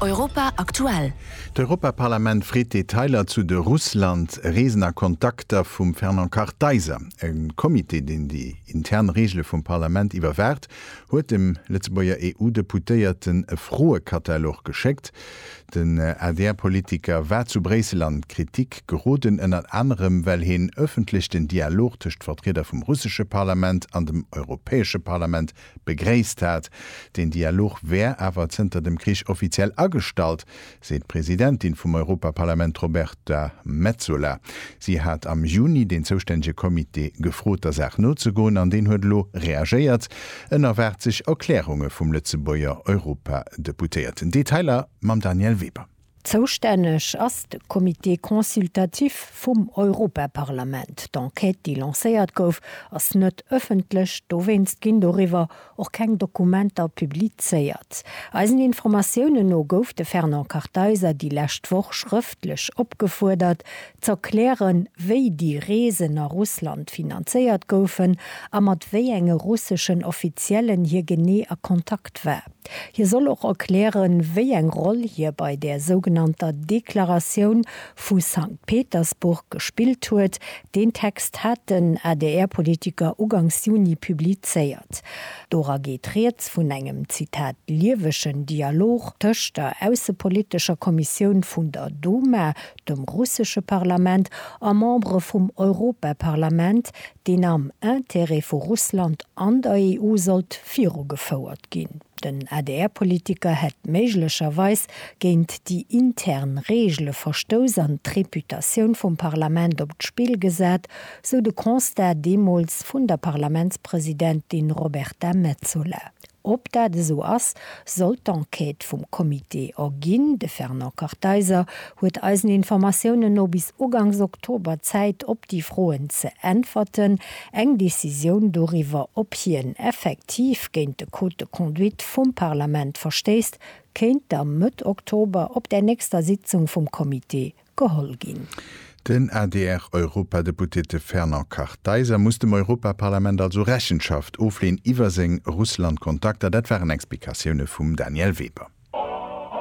Europa aktuell. D'Europaparlament freet Detailer zu de Russland-Reesen a Kontakter vum Fernand Kartheiser. E Comité, deen déi intern Reegele vum Parlament iwwerwaacht, huet dem Lëtzebuerger EU-Deputéierten e Froekatalog geschéckt. Den ADR-Politiker war zu Bréissel an d'Kritik geroden, ënnert anerem well hien ëffentlech den Dialog tëscht Vertrieder vum russesche Parlament an dem Europäesche Parlament Begréisst hat. Den Dialog wär awer zënter dem Krich offiziell agestallt, seet d'Presidentin vum Europaparlament Roberta Metsola. Si hat am Juni den zoustännege Comité gefrot, der Saach nozegoen an deen huet elo reagéiert. En erwaart sech Erklärunge vum Lëtzebuerger Europadeputéierten. Detailer mam Danièle Weber. Zoustänneg ass de Comité consultatif vum Europaparlament. D'Enquête, déi lancéiert gouf, ass net ëffentlech, dowéinst ginn doriwwer och keng Dokumenter publizéiert. Eisen Informatiounen no gouf de Fernand Kartheiser déi lescht Woch schrëftlech opgefuerdert, z'erklären, wéi déi Reesen a Russland finanzéiert goufen a mat wéi enge russeschen Offiziellen hie genee a Kontakt war. Hie soll och erklären, wéi eng Roll hie bei där sougenannter Deklaratioun vu Sankt Petersburg gespillt huet. Deen Text hat den ADR-Politiker ugangs Juni publizéiert. Dora geet rieds vun engem, Zitat, liewegen Dialog tëscht der aussepolitescher Kommissioun vun der Duma, dem russesche Parlament, a Membere vum Europaparlament, deen am Intérêt vu Russland an der EU sollt virugefouert ginn. Den ADR-Politiker hätt méiglecherweis géint déi intern Reegele verstouss an d'Reputatioun vum Parlament op d'Spill gesat, sou de Constat deemools vun der Parlamentspresidentin Roberta Metsola. Ob dat esou ass, sollt d'Enquête vum Comité erginn. De Fernand Kartheiser huet eisen Informatiounen no bis ugangs Oktober Zäit op déi Froen ze äntwerten. Eng Decisioun doriwwer, ob hien effektiv géint de Code de conduite vum Parlament verstéisst, kéint da Mëtt Oktober op der nächster Sitzung vum Comité geholl ginn. Den ADR-Europadeputete Fernand Kartheiser muss dem Europaparlament also Rechenschaft ofleeën iwwer seng Russlandkontakter. Dat waren Explikatioune vum Danièle Weber.